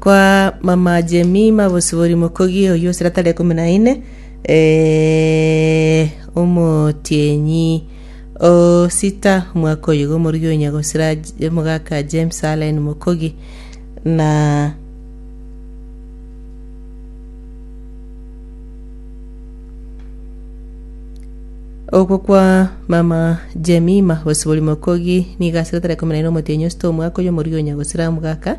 Kwa mama Jemima bosibori mokogi oyio esira tari ekomi na ine eh, omotienyi o sita omwaka oyo igo omorugi onya gosira J- omogaka James Allen mokogi na Okwo kwa mama Jemima bosibori mokogi nigo asira tari ekomi na ine omotienyi o sita omwaka oyo omorugi onya gosira omogaka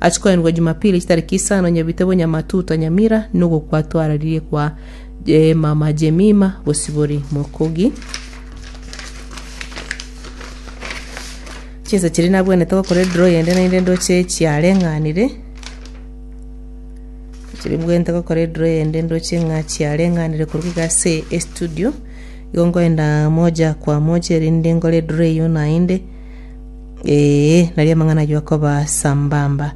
Achikoirwa Jumapili chitariki isano nyebite bonyamatuta Nyamira nugo kwatwararirie kwa eh, mama Jemima Bosibori Mokogi. Chinsa chiri nabwenete gokora edro yende naende ndoche chiareng'anire chiri bwente gokora edro yende ndoche ng'a chiareng'anire korwa iga ase estudio igo ngoenda moja kwa moja erinde nkore edro eyio naende Ee, nari amang'ana ayio akoba sambamba.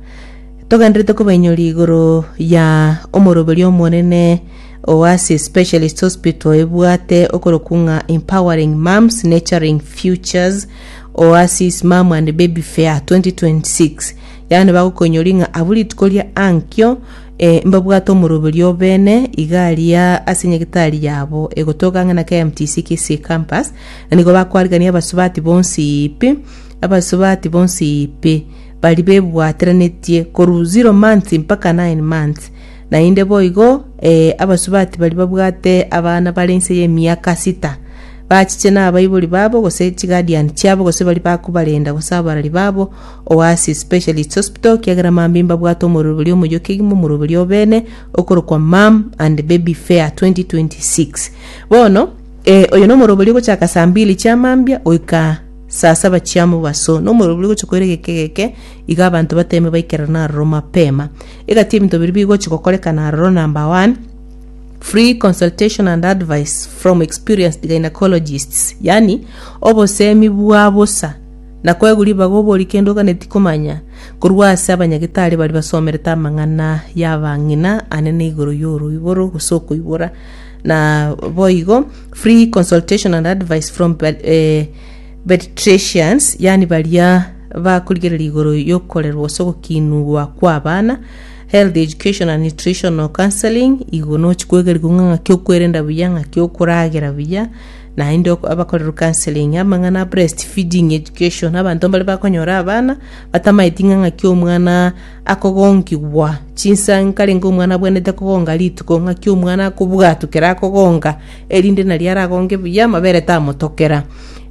Togenderete kobainyoria igoro ya omoroberio omonene Oasis Specialist Hospital ebwate okorokwu ng'a Empowering Moms Nurturing Futures Oasis Mom and Baby Fair 2026 yaani bagokoinyoria ng'a abwo rituko ria ankio eh, mbabwate omoroberio obene igaria ase nyagetari yabo egotoka ang'e na KMTC Kisii Campus na nigo bakwarigania abasubati bonsi pi, abasubati bonsi pi, baria bebwateranetie korwa zero months mpaka nine months. Naende boigo eh, abasubati baria babwate abana bare inse y'emiaka sita, bachiche nabaibori babo, gose chiguardian chiabo, gose baria bakobarenda, gose abarari babo, Oasis Specialist Hospital, kiagera mambia mbabwate omoroberi omoyoki kegima omoroberi obene, okorokwa Mum and Baby Fair 2026. Bono. Ee, oyo nomoroberio ogochaka saa mbili chia mambia goika saa saba chia mobaso, nomoroberio gochia koira egeka egeke, igo abanto bateme baikerana aroro mapema. Egati ebinto biria bigochia gokorekana aroro number one, free consultation and advice from experienced gynecologists, yaani obosemi bwa bosa na koegwa ribaga obori kende oganeti komanya korwa ase abanyagitari baria basomerete amang'ana y'abang'ina anene igoro y'oroiboro gose okoibora. Na boigo, free consultation and advice from ped- eh, pediatricians, yani baria bakorigereria igoro y'okorerwa gose ogokinigwa kw'abana, health education and nutritional counseling, igo nochi kwegerigwa ng'a ng'aki okwerenda buya, ng'aki okoragera buya, naende ok- abakorerwa counseling, amang'ana a breast feeding education, abanto mbare bakonyora abana, batamaeti ng'a ng'aki omwana akogongigwa chinsa nkarenge omwana abwenerete kogonga rituko, ng'aki omwana akobwatwa ekero akogonga, erinde nario aragonge buya amabere tamotokera.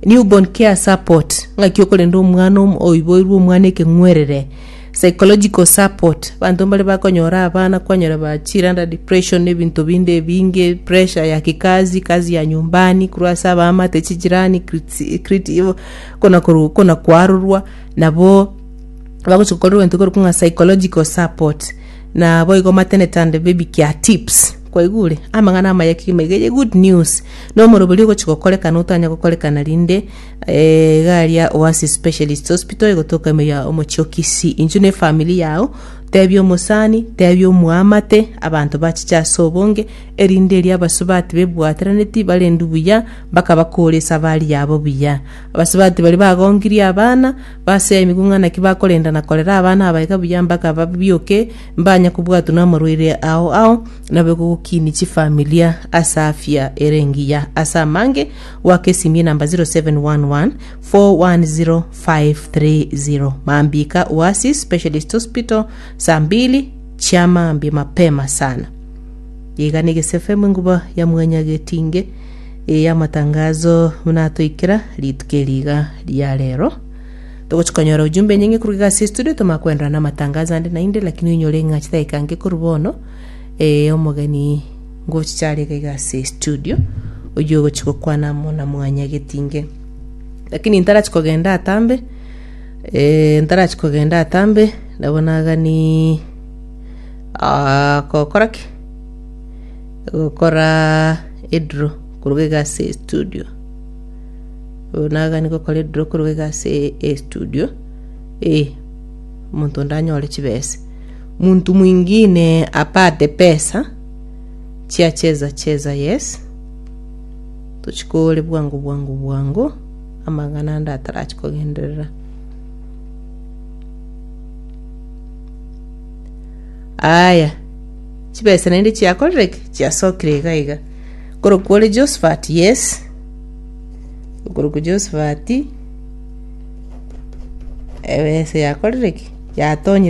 Newborn care support, ng'aki okorenda omwana om- oiboirwe omwana ekeng'werere. Psychological support, abanto mbare bakonyora abana kwanyora ba chire under depression na ebinto binde ebinge, pressure ya kikazi, kazi ya nyumbani, korwa ase abaamate, chijirani, criti- criti- igo- kona koru- kona koarorwa nabo bagochia gokora egento korokwa ng'a psychological support, na boigo maternity and baby care tips, kwaigure? Amang'ana amaya kegima iga eye good news, na omorobori ogochia gokorekana otanya gokorekana rinde eh, iga aria Oasis Specialist Hospital egotoka ime ya omochie o Kisii. Inchuo na efamiri yao, tebia omosani, tebia omwaamate, abanto bachiche ase obonge, erinde erio abasubati bebwataraneti barendwe buya, mpaka bakoore esabari yabo buya. Abasubati baria bagongirie abana, Basea emigu ng'a naki bakorenda na korera abana abaika buya mpaka babioke, mbanye kobwatwa namorwaire ao ao, nabe gogokiini chifamilia ase afya ere engiya. Ase amange, goaka esimi enamba 0711 410 530. Mambika Oasis Specialist Hospital, saa mbili chiamaambia mapema sana. Yegana egesefe amo enguba ya mwanya getinge. Ee, amatangazo buna atoikera rituko eri iga ria rero. Togochi konyora ujumbe enyinge koruga iga ase studio, tomanye koenderana na amatangazo ande naende, lakini oinyore ng'a chidakika nke korwa bono, ee, omogeni ngochichare iga iga ase studio, oyio ogochi gokwana amo na mwanya getinge. Lakini ntarachi kogenda atambe, ee, ntarachi kogenda atambe, nabo nagani ah, gokora ki? Gokora edraw koruga iga ase estudio. Buna iga nigo okora edraw koruga iga ase estudio, eh, omonto onde anyore chibese. Muntu mwingine apate pesa, chiacheza cheza yes, tochikore bwango bwango bwango, amang'ana ande atarachi kogenderera. Aya. Chibesa naende chiakorereke chiasokire iga iga. Korokwa ore Josephat, yes. Okorokwa Josephat, ebesa yakorereke yatonyire